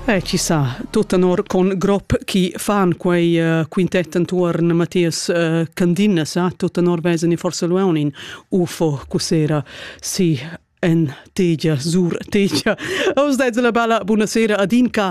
Eh, chi sa, tut tenor con grop chi fan quei uh, quintet entuorn Matthias uh, Candina sa, tut tenor vesen i forse Luonin UFO cussera si en tegia, sur tegia. Aus deits la bella, buonasera ad Inca,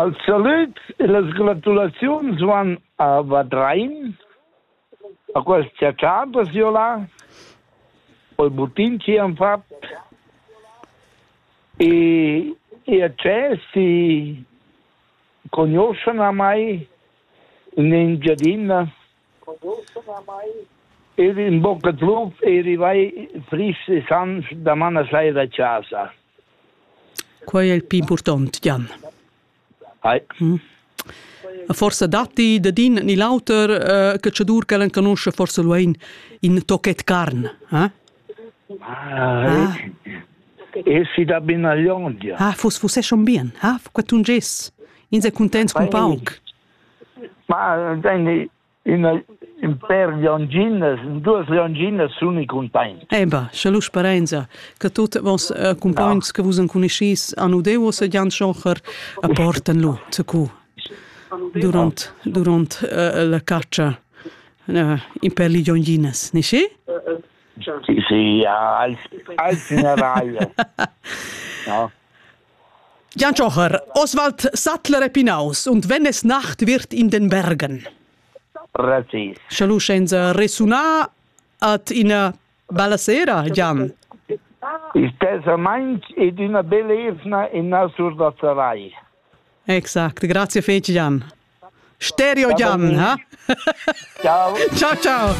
Els salüds e las gratulaziuns van a Vadrein, a quels tscherchaders jo là, col buttin chi han fat e e acces si cognoschan a mai in Engiadina Il ün bucca trumf e rivai frisch e sans daman a sai da chasa. Quai è il pli impurtant, Jan. Hai. Mm. Forsa datti dad in ni l'auter uh, catschadur che l'enconusce forsa luain in tochet carn, eh? Ah, e si da binaglion, ja. Ah, fus, fus è schon bien, ah, qua tun ges. Ins è contents con pauc. Ma ün pêr lionginas, duos lionginas suni cuntaints. Eh bah, scha lu sperainza che tuot vos cumpogns che vus encuniscis han udeu o sajan schocher a portan lu zacu durant durant la catscha in per lionginas, ni schi? Sì, sì, als als in raia. No. Gian Tschocher, Oswald Sattler e Pinaus und wenn es Nacht wird in den Bergen. Precis. Sche lu senza resunar at ina bella sera, Gian. Stesament ed una bella evna in Nasur da Sarai. Exakt, grazie fece Gian. Stereo Gian, ha? Ciao. ciao, ciao.